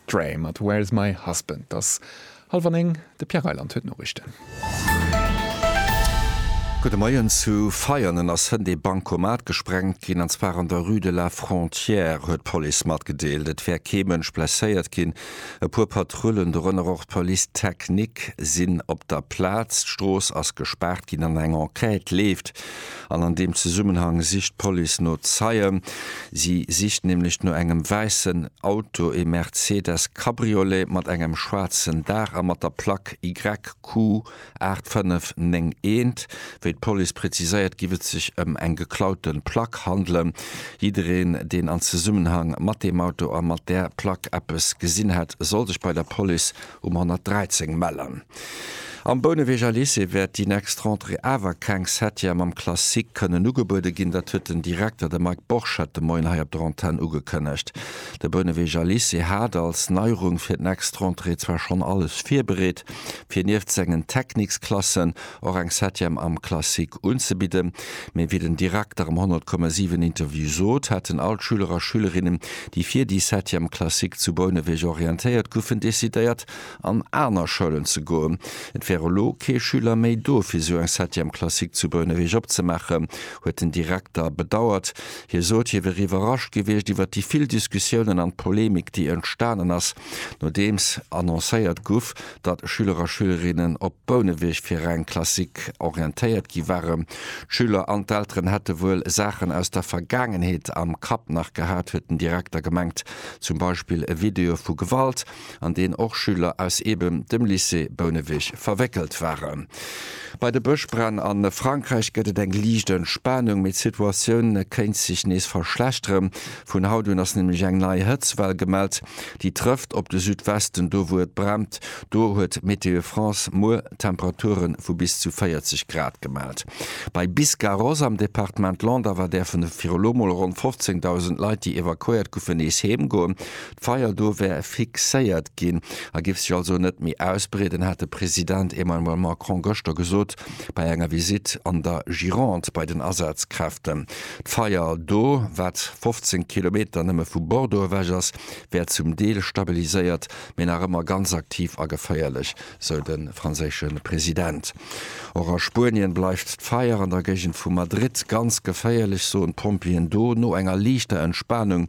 Dre mat Where's My Husband. Et ass hallef an éng, de Pierre Reyland huet Noriichten. Gudde Moien, Zu Veianen ass hënt ee Bankomat gesprengt ginn, an zwar an der Rue de la Frontière, huet d'Police matgedeelt. Et wär kee Mënsch blesséiert ginn. E puer Patrullen, dorënner och d'Police technique, sinn op der Plaz. D'Strooss ass gespaart ginn an eng Enquête leeft. An an deem Zesummenhang sicht d'Police no Zeien. Si sicht nämlech no engem wäissen Auto, ee Mercedes Cabriolet mat engem schwaarzen Daach a mat der Plack YQ 8591. Wéi d'Police präziséiert, giff et sech ëm eng geklaute Plack handelen. Jiddereen, deen an Zesummenhang mat deem Auto a mat där Plack eppes gesinn hätt, soll sech bei der Police um 113 mellen. Am Bouneweger Lycée wäert déi nächst Rentrée awer keng Septième am Classique kënnen ugebuede ginn. Dat huet den Direkter, de Mike Borchert, de Moien hei op der Antenn ugekënnegt. De Bouneweger Lycée hat als Neierung fir d'nächst Rentrée zwar schonn alles virbereet, fir nieft sengen Techniksklassen och eng Septième am Classique unzebidden. Mee wéi den Direkter am 100,7 Interview sot, haten all d'Schüler a Schülerinnen, déi fir déi Septième Classique zu Bouneweg orientéiert goufen, decidéiert, an aner Schoulen ze goen. Et wär elo kee Schüler méi do fir esou eng Septième classique zu Bouneweg opzemaachen, huet den Direkter bedauert. Hie sot, hie wär iwwerrascht gewiescht iwwer déi vill Diskussiounen an d'Polemik, déi entstanen ass, nodeems annoncéiert guff, datt Schüler a Schülerinnen op Bouneweg fir eng Classique orientéiert gi waren. D'Schüler an d'Elteren hätte wuel Saachen aus der Vergaangenheet am Kapp nach gehat, huet den Direkter gemengt, zum Beispill e Video vu Gewalt. an deen och Schüler aus eben dem Lycée Bouneweg verwéckelt waren. Bei de Bëschbränn a Frankräich gëtt et eng liicht Entspanung, mee d'Situatioun kéint sech nees verschlechtere. Vun haut un ass nämlech eng nei Hëtzwell gemellt. Déi trëfft op de Südwesten, do wou et brennt. Do huet Météo France muer Temperature vu bis zu 40 Grad gemellt. Bei Biscarrosse am Departement Landes awer däerfen vir elo mol ronn 15.000 Leit, déi evakuéiert goufen, nees heem goen. D'Feier do wär fixéiert ginn a géif sech also net méi ausbreeden, hat de President Emmanuel Macron gëschter gesot bei enger Visitt an der Gironde bei den Asazkräften. D'Feier do, wat 15 Kilometer nëmme vu Bordeaux ewech ass, wär zum Deel stabiliséiert, mee nach ëmmer ganz aktiv a geféierlech, sou de franséische President. Och a Spuenien bleift d'Feier an der Géigend vu Madrid ganz geféierlech, soen d'Pompjeeën do no enger liichter Entspanung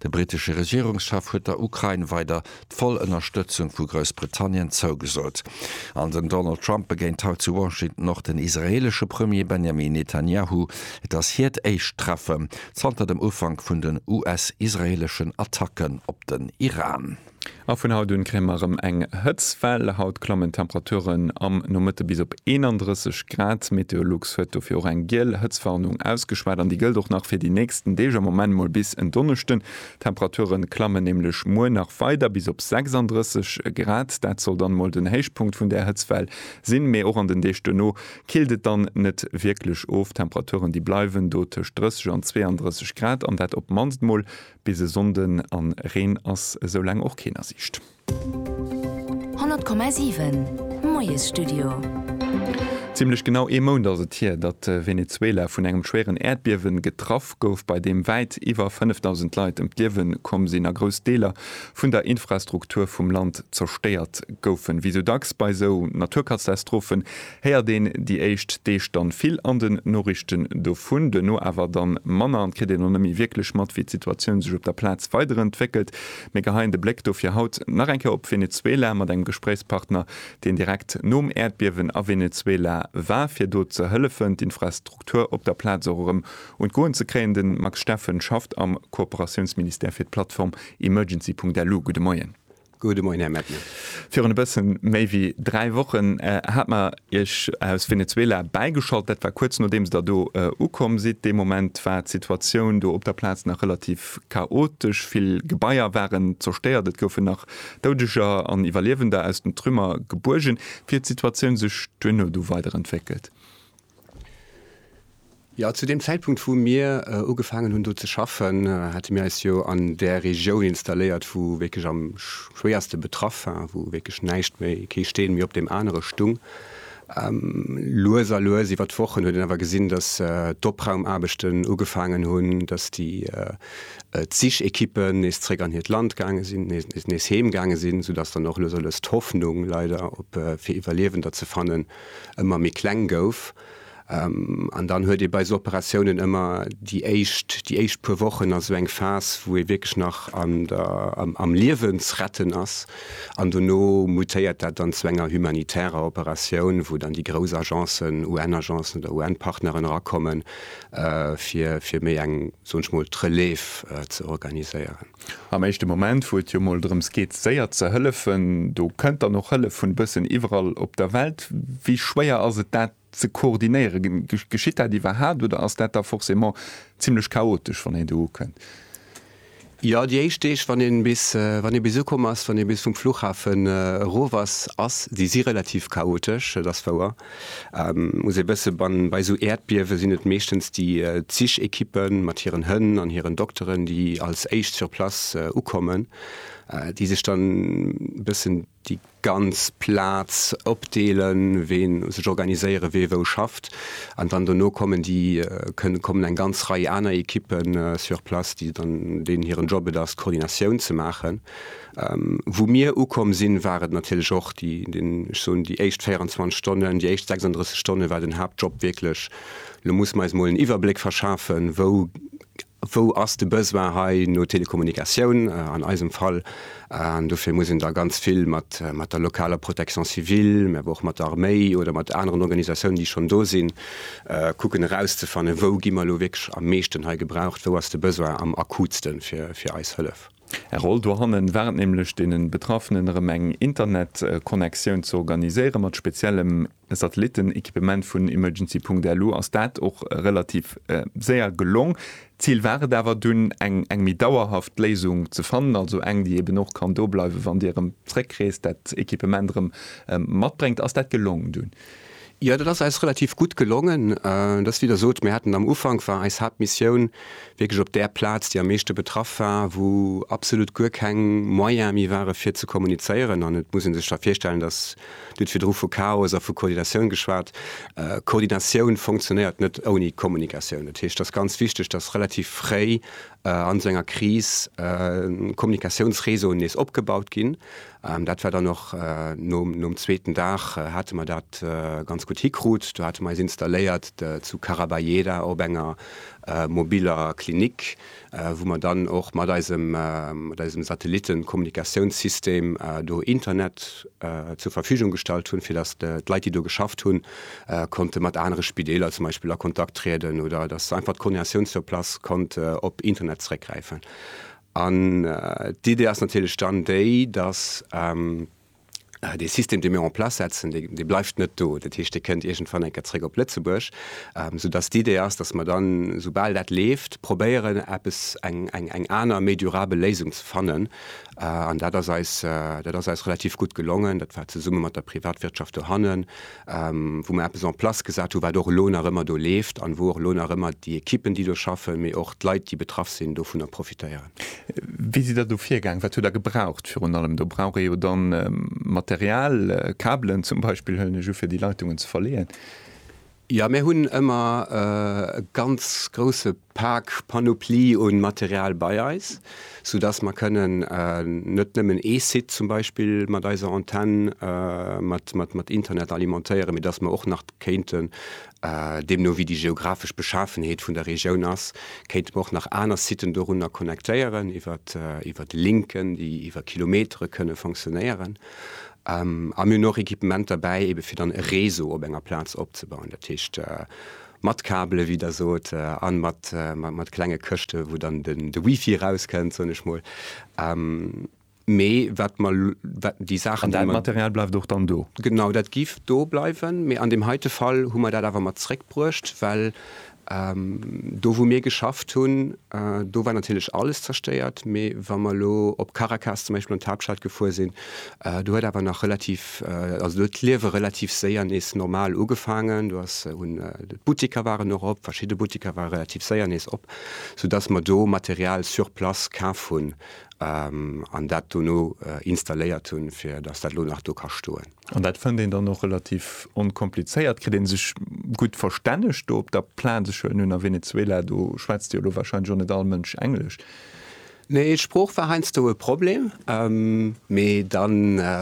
De brittesche Regierungschef huet der Ukrain weider d'voll Ënnerstëtzung vu Groussbritannien zougesot. An den Donald Trump begéint haut zu Washington och den israeelesche Premier Benjamin Netanyahu. Et ass hiert éischt Treffe zanter dem Ufank vun den US-israeeleschen Attacken op den Iran. A vun haut un kréie mer erëm eng Hëtztwell. Haut klammen d'Temperaturen am Nomëtte bis op 31 Grad. Meteolux huet dofir och eng giel Hëtztwarnung ausgeschwat an déi gëllt och nach fir déi nächsten Deeg, am Moment mol bis en Donneschden. D'Temperature klammen nämlech muer nach weider bis op 36 Grad. Dat soll dann mol den Héichpunkt vun där Hëtztwell sinn, mee och an den Deeg duerno killt et dann net wierklech of. D'Temperaturen déi bleiwen do tëscht 30 an 32 Grad an dat op d'mannst mol Bis e Sonnden, a Reen ass esou laang och keen a Siicht. 100,7 Moiesstudio. Zimmlech genau ee Mount ass et hier, datt Venezuela vun engem schwéieren Äerdbiewen getraff gouf, bei deem wäit iwwer 5.000 Leit ëm d'Liewe komm sinn a grouss Deeler vun der Infrastruktur vum Land zerstéiert goufen. Wéi sou dacks bei sou Naturkatstastrophen, Héiert een déi éischt Deeg dann vill an den Noriichten dovun, duerno awer dann manner an et kritt een och net méi wierklech mat wéi d'Situatioun sech op der Plaz weider entwéckelt. Mir geheien de Bléck dofir haut nach eng Kéier op Venezuela mat engem Gespréichspartner deen direkt nom Äerdbiewen a Venezuela war fir do ze hëllefen d'Infrastruktur op der Plaz och erëm un d'Goen ze kréien. Den Max Steffen schafft am Kooperatiounsministère fir d'Plattform Emergency.lu. Gudde Moien. Gudde Moien, Här Mettner. Virun e bësse méi wéi dräi Wochen hat mer Iech aus Venezuela bäigeschalt. Dat war kuerz nodeems Der do ukomm sidd. Dee Moment war d'Situatioun do op der Plaz nach relativ chaotesch. Vill Gebaier waren zerstéiert, et goufen nach Doudeger an Iwwerliewender aus den Trümmer gebuergen. Wéi huet d'Situatioun sech duerno du weiderentwéckelt? Jo, zu deem Zäitpunkt, wou mir ugefaangen hunn, do ze schaffen, hate mir eis jo an där Regioun installéiert, wou wierklech am schwéierste betraff war, wou wierklech näischt méi, kee Steen méi op deem anere stung. Lues a lues, iwwer d'Wochen, huet een awer gesinn, datt d'Opraumaarbechten ugefaangen hunn, datt déi Zich-Ekippen nees zréck an hiert Land gaange sinn, nees heem gaange sinn, soudatt dann och lues a lues d'Hoffnung leider op fir Iwwerliewender ze fannen ëmmer méi kleng gouf. An dann huet ee bei esou Operatiounen ëmmer déi éischt, déi éischt puer Wochen ass esou eng Phas, wou ee wierklech nach an der, am Liewensretten ass. An dono mutéiert dat dann zu enger humanitärer Operatioun, wou dann déi grouss Agencen, UN-Agencen oder UN-Partneren erakommen, fir, fir méi eng, soen ech mol, d'Relève ze organiséieren. Am éischte Moment, wou et jo mol drëms geet, séier ze hëllefen, do kënnt dann och Hëllef vun e bëssen iwwerall op der Welt. Wéi schwéier ass et, dat ze koordinéieren? Geschitt dat iwwerhaapt oder ass dat da forcément zimlech chaotesch, wann een do ukënnt? Jo, déi éischt Deeg, wann ee bis, wann ee bis ukomm ass, wann ee bis vum Fluchhafen erof ass, ass, déi si relativ chaotesch, dat ass wouer. Muss ee bësse bannen. Bei esou Äerdbiewe sinn et meeschtens déi d'Sichekippe mat hiren Hënn an hiren Dokteren, déi als éischt sur place ukommen, déi sech dann e bëssen déi ganz Plaz opdeelen, wee sech organiséieren, wee wou schafft. An dann dono kommen déi, kommen eng ganz Rei aner Ekippe sur place, déi dann, deenen hiren Job et ass, d'Koordinatioun ze maachen. Wou mir ukomm sinn, war et natierlech och déi, ech soen, déi éischt 24 Stonnen, déi éischt 36 Stonne war den Haaptjob wierklech, Elo musse mer eis emol en Iwwerbléck verschafen, wou wou ass de Besoin hei no Telekommunikatioun an eisem Fall. An dofir muss een da ganz vill mat mat der lokaler Protection civile, mä awer och mat der Arméi oder mat aneren Organisatiounen, déi schonn do sinn, kucken erauszefannen, wou gi mer elo wierklech am meeschten hei gebraucht, wou ass de Besoin am akutste fir fir eis Hëllef. Är Roll dohannen war et nämlech deenen Betraffenen erëm eng Internetconnectioun ze organiséieren, mat speziellem Satellittenequipement vun Emergency Punkt lu ass dat och relativ séier gelong. D'Zil war et awer dunn eng méi dauerhaft Léisung ze fannen, also eng déi eben och kann do bleiwen, wann Dir erëm zréckreest, dat Equipement erëm matbréngt. Ass dat gelong dunn? Jo, dat ass eis relativ gutt gelongen. Et ass wéi Der sot, mir haten am Ufank, war eis Haaptmissioun wierklech op där Plaz, déi am meeschte betraff war, wou absolut guer keng Moyene méi ware fir ze kommunizéieren. An et muss ee sech da virstellen, dass, Dir hutt virdru vu Chaos a vu Koordinatioun geschwat, Koordinatioun funktionéiert net ouni Kommunikatioun. Dat heescht, et ass ganz wichteg, dass relativ fréi an esou enger Kris Kommunikatiounsreseauen nees opgebaut ginn, Dat war dann och nom zweeten Dag hate mer dat ganz gutt hikrut. Do hate mer eis installéiert zu Caraballéda op enger mobiller Klinik, wou mer dann och mat eisem Satellittenkommunikatiounssystem do Internet zur Verfügung gestallt hunn, fir datt d'Leit, déi do geschafft hunn, konnte mat anere Spideeler zum Beispill a Kontakt trieden oder datt einfach d'Coordinatioun sur place konnt op Internet zeréckgräifen. An d'Idee ass natierlech dann déi, dass dee System, dee mir en place setzen, dee bleift net do. Dat heescht, dee kënnt iergendwann eng Kéier zréck op Lëtzebuerg, soudass d'Idee ass, dass mer dann, soubal dat leeft, probéieren, eppes, eng aner, méi durabel Léisung ze fannen. An dat ass eis, dat ass eis relativ gutt gelongen. Dat war zesumme mat der Privatwirtschaft dohannen, wou mer eppes en place gesat hunn, wat och elo nach ëmmer do leeft an wou och elo nach ëmmer déi Ekippen, déi do schaffen, mee och d'Leit, déi betraff sinn, dovunner profitéieren. Wéi sidd Der do virgaangen? Wat huet Der gebraucht virun allem? Do brauch ee jo dann Material, Kabelen zum Beispill, huelen ech u, fir déi Leitungen ze verleeën. Jo, mir hunn ëmmer e ganz grouse Paak Panoplie un Material bei eis, sou dass mer kënnen net nëmmen ee Site zum Beispill mat eiser Antenn mat Internet alimentéieren, mee dass mer och nach kéinten, deemno wéi déi geographesch Beschafenheet vun der Regioun ass, kéinte mer och nach aner Siten dorunner connectéieren iwwert Linken, déi iwwer Kilometere kënne fonctionnéieren. A mir hunn och Equipementer bäi, ebe fir dann e Réseau op enger Plaz opzebauen. Dat heescht, Mat Kabele, wéi Der sot, a mat klenge Këschte wou dann de Wifi erauskënnt, soen ech mol. Mee wat mer, wat déi Saachen, déi mer. An dat Material bleift och dann do? Genau, dat géif do bleiwen. Mee an deem heite Fall hu mer dat awer mat zréckbruecht, well do wou mir geschafft hunn, do war natierlech alles zerstéiert. Mee wa mer elo op Caracas zum Beispill, an d'Haaptstad gefuer sinn, Do huet awer nach relativ, also do huet d'Liewe relativ séier nees normal ugefaangen. Do ass un, d'Butteker waren och op, verschidde Butteker ware relativ séier nees op, soudatt mer do Material sur place kaf hunn an dat dono installéiert hunn, fir datt dat elo nach do ka stoen. An dat fënnt een dann och relativ onkomplizéiert? Kritt ee sech gutt verstännegt do op der Plaz? Ech huelen un, a Venezuela, do schwätzt jo elo warscheinlech och net all Mënsch Englesch. Nee, d'Sprooch war heiansdo e Problem, mee da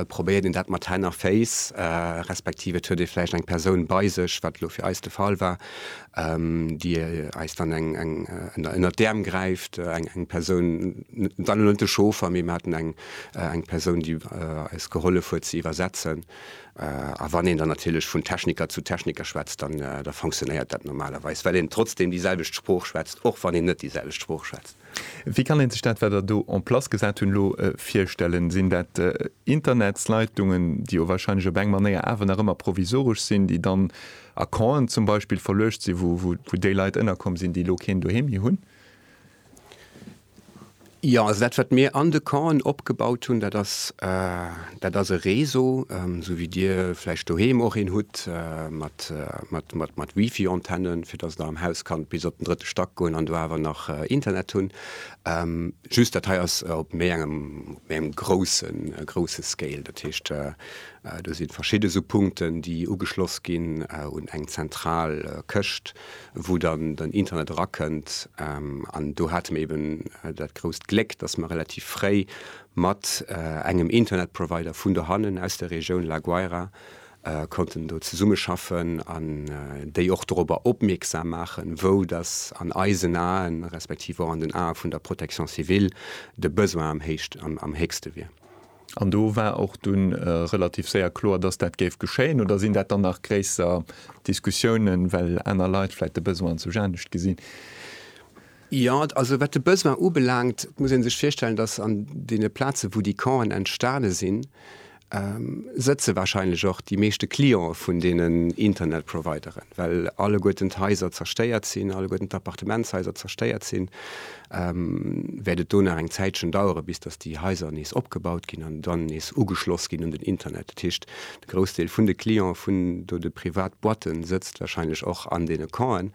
probéiert een dat mat Hänn a Féiss, respektiv et huet ee vläicht eng Persoun bei sech, wat elo fir eis de Fall war, déi eis dann ënner d'Äerm gräift, eng Persoun, dann elo net de Chauffer, mee mir haten eng Persoun, déi eis gehollef huet ze iwwersetzen. A wann een dann natierlech vun Techniker zu Techniker schwätzt, dann fonctionnéiert dat normalerweis, well een trotzdeem déi selwecht Sprooch schwätzt, och wann een net déi selwecht Sprooch schwätzt. Wéi kann ee sech dat, wat Der do en place gesat hunn, elo virstellen? Sinn dat Internetsleitungen, déi jo wahrscheinlech op eng Manéier awer nach ëmmer provisoresch sinn, déi dann a Campen zum Beispill verluecht sinn, wou déi Leit ënnerkomm sinn, déi elo keen Doheem méi hunn? Jo, also dat, wat mir an de Campen opgebaut hunn, dat ass Dat ass e Réseau, esou wéi Dir vläicht doheem och een hutt, mat Wifi-Antennen, fir dass Der am Haus kannt bis op den drëtte Stack goen an do awer nach Internet hunn. Just dat hei ass op méi engem grousse Scale. Dat heescht, do si verschidde sou Punkten, déi ugeschloss ginn un eng zentral Këscht, wou dann den Internet erakënnt. An do hate mer eeben dat grousst Gléck, dass mer relativ fréi Mat engem Internetprovider vun dohannen aus der Regioun La Guaira konnten do zesummeschaffen an déi och dorobber opmierksam maachen, wou datt an eisen Aen, respektiv och an den Ae vun der Protection civile, de Besoin am héchste wier. An do war och dunn relativ séier kloer, datt dat géif geschéien, oder sinn dat dann nach gréisser Diskussiounen, well aner Leit vläicht de Besoin esouch anescht gesinn? Jo, also wat de Besoin ubelaangt, et muss ee sech virstellen, datt an deene Plazen, wou déi Campen entstane sinn, sëtze wahrscheinlech och déi meeschte Cliente vun deenen Internetprovideren, well alleguerten d'Haiser zerstéiert sinn, alleguerten d'Appartementshaiser zerstéiert sinn, wäert et do nach eng Zäitchen dauere bis datt déi Haiser nees opgebaut ginn an dann nees ugeschloss ginn un den Internet. Dat heescht, de Groussdeel vun de Cliente vun do de Privatboîten sëtzt wahrscheinlech och an deene Campen.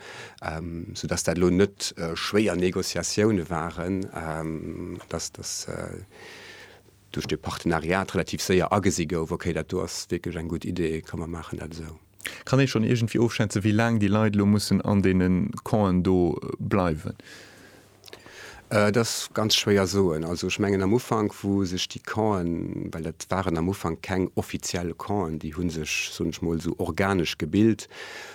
Soudass dat elo net schwéier Négociatioune waren, dass duerch dee Partenariat relativ séier agesi gouf, okay, dat do ass wierklech eng gutt Idee, ka mer maachen dat esou. Kann ee schonn iergendwéi ofschätzen, wéi laang déi Leit elo mussen an deene Campen do bleiwen? Et ass ganz schwéier soen. Also ech mengen am Ufank, wou sech déi Campen, well dat waren am Ufank keng offiziell Campen, déi hu sech, soen ech mol, esou organesch gebilt,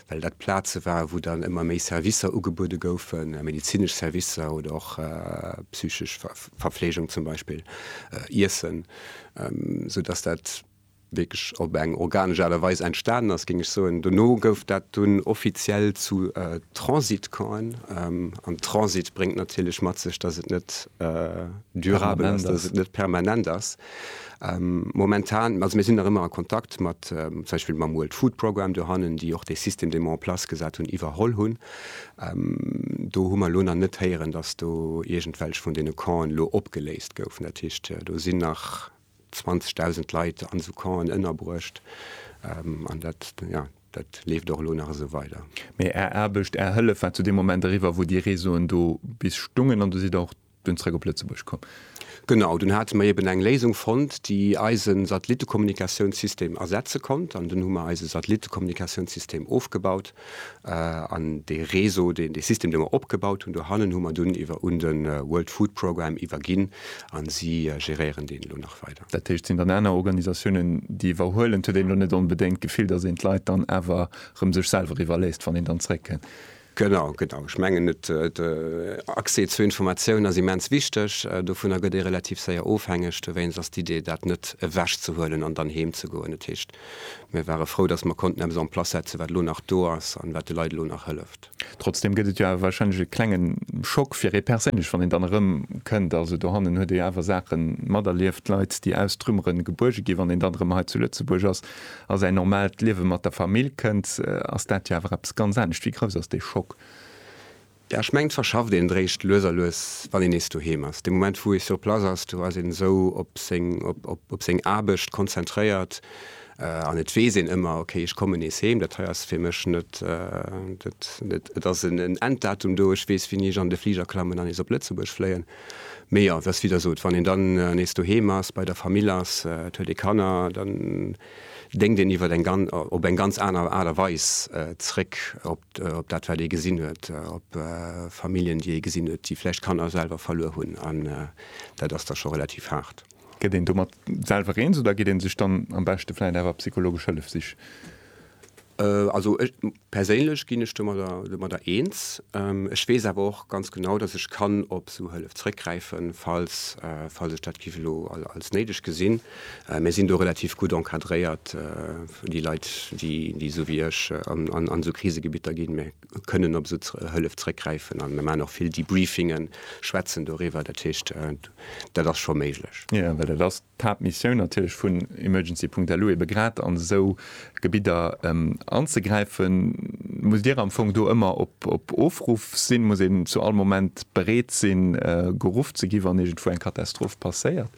well dat Plaze waren, wou dann ëmmer méi Servicer ugebuede goufen, medezinesch Servicer oder och psychesch Verfleegung zum Beispill, Iessen, soudass dat, wierklech op eng organesch Aart a Weis entstanen ass, géing ech soen. Dono gouf dat dunn offiziell zu Transitcampen. An Transit bréngt natierlech mat sech, datt et net durabel ass, datt et net permanent ass. Momentan, also mir sinn nach ëmmer a Kontakt mat zum Beispill mam World Food Programme dohannen, déi och dee System, dee mer en place gesat hunn, iwwerholl hunn. Do hu mer elo nach net héieren, datt do iergendwelch vun deene Campen elo opgeléist goufen. Dat heescht, do sinn nach 20.000 Leit an esou Campen ënnerbruecht an dat, jo, dat leeft och elo nach esou weider. Mee Är Aarbecht, Är Hëllef war zu deem Moment eriwwer, wou déi Réseauen do bis stungen an Du sidd och dunn zrëck op Lëtzebuerg komm? Genau, dunn hate mer eben eng Léisung fonnt, déi eise Satellittekommunikatiounssystem ersetze konnt an dunn hu mer eise Satellittekommunikatiounssystem ofgebaut An dee Réseau, deen, dee System, dee mer opgebaut hunn dohannen, hu mer dunn iwwer un de World Food Programme iwwerginn a si geréieren deen elo nach weider. Dat heescht, sinn dann aner Organisatiounen, déi iwwerhuelen? Et huet een elo net onbedéngt d'Gefill, datt een d'Leit dann awer erëm sech selwer iwwerléisst, wann een dann zréckkënnt. Genau, genau. Ech mengen, de Accès zu Informatioun ass immens wichteg. Dovunner gëtt ee relativ séier ofhängeg. Dowéinst ass d'Idee, dat net ewechzehuelen an dann heem ze goen. Dat heescht, Mir ware frou, datt mer konnten eppes en place setzen, wat elo nach do ass an wat de Leit elo nach hëlleft. Trotzdem gëtt et jo awer wahrscheinlech e klengen Schock fir ee perséinlech, wann een dann erëm kënnt. Also dohannen huet ee jo awer Saachen materlieft, Leit, déi aus Trümmeren gebuerge ginn. Wann een dann erëm hei zu Lëtzebuerg ass a säin normaalt Liewe mat der Famill kënnt, ass dat jo awer eppes ganz anescht. Wéi grouss ass dee Schock? Ja, ech mengen, et verschafft een et eréischt lues a lues, wann een nees doheem ass. Dee Moment, wou ee sur place ass, do ass een esou op seng, op seng Aarbecht konzentréiert an et weess een ëmmer, okay, ech kommen nees heem. Dat hei ass fir mech net, et ass en Enddatum do, ech weess, wéini ech an de Fliger klammen an nees op Lëtzebuerg fléien. Mee jo, et ass wéi Der sot, wann een dann nees doheem ass, bei der Famill ass, et huet ee Kanner, dann denkt een iwwer eng, op eng ganz aner Aart a Weis zréck op dat wat ee gesinn huet, op Familljen déi ee gesinn huet, déi vläicht Kanner selwer verluer hunn an dat ass da scho relativ haart. Gëtt een domat selwer eens oder geet ee sech dann am beschte vläicht awer psychologesch Hëllef sichen? Also ech perséinlech ginn ech domadder eens. Ech weess awer och ganz genau, datt ech kann op esou Hëllef zréckgräifen, falls ech dat giff elo als néideg gesinn. Mir sinn do relativ gutt encadréiert. Déi Leit, déi esou wéi ech an esou Krisegebitter ginn, mir kënnen op esou Hëllef zréckgräifen a mir maachen och vill Debriefingen, schwätzen doriwwer. Dat heescht, dat ass scho méiglech. Jo, well dat ass d'Haaptmissioun natierlech vun Emergency Punkt Elo, ebe grad an esou Gebidder anzegräifen. Musst Dir am Fong do ëmmer op Ofruff sinn? Muss een zu all Moment bereet sinn, geruff ze gi wann iergendwou eng Katastroph passéiert?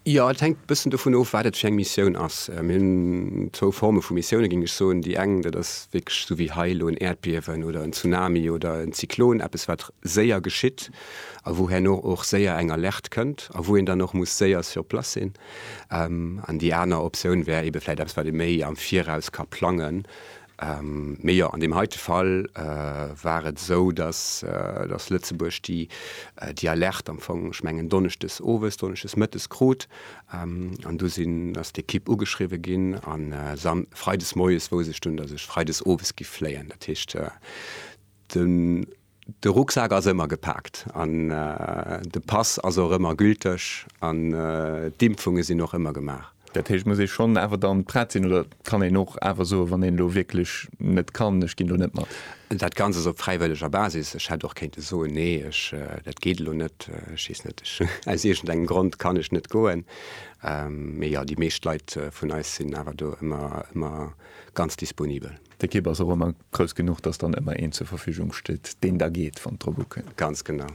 Jo, et hänkt e bëssen dovun of, wat et fir eng Missioun ass. Mir hunn zwou Forme vu Missiounen, géing ech soen. Déi eng, dat ass wierklech esou wéi hei elo en Äerdbiewen oder en Tsunami oder en Zyklon, eppes, wat séier geschitt a wou herno och séier eng Alerte kënnt a wou een dann och muss séier sur place sinn. An déi aner Optioun wär eebe vläicht eppes, wat ee méi am Viraus ka plangen, Mee jo, an deem heite Fall war et esou, datt Lëtzebuerg déi Alerte am Fong, ech mengen donneschdes owes, donneschdes mëttes krut. An du sinn, ass d'Ekipp ugeschriwwe ginn a sam-, freides moies wousst ech dunn, datt ech freides owes géif fléien. Dat heescht, de De Rucksak ass ëmmer gepaakt an de Pass ass och ëmmer gülteg an d'Impfunge sinn och ëmmer gemaach. Dat heescht, et muss ee schonn awer dann prett sinn oder kann een och awer soen, wann een elo wierklech net kann, ech ginn do net mat? Dat Ganzt ass op fräiwëlleger Basis. Ech hätt och kéinte soen, nee, ech, dat geet elo net, ech weess net, ech, aus iergend engem Grond kann ech net goen. Mee jo, déi meescht Leit vun eis sinn awer do ëmmer, ëmmer ganz disponibel. D'Ekipp ass och ëmmer grouss genuch, dass dann ëmmer een zur Verfügung steet, deen da geet, wann d'Drock ukënn. Ganz genau.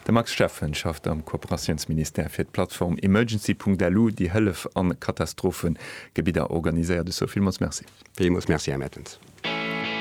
De Max Steffen schafft am Kooperatiounsministère fir d'Plattform Emergency.lu, déi Hëllef a Katastrophegebidder organiséiert. Esou villmools Merci. Villmools Merci, Här Mertens.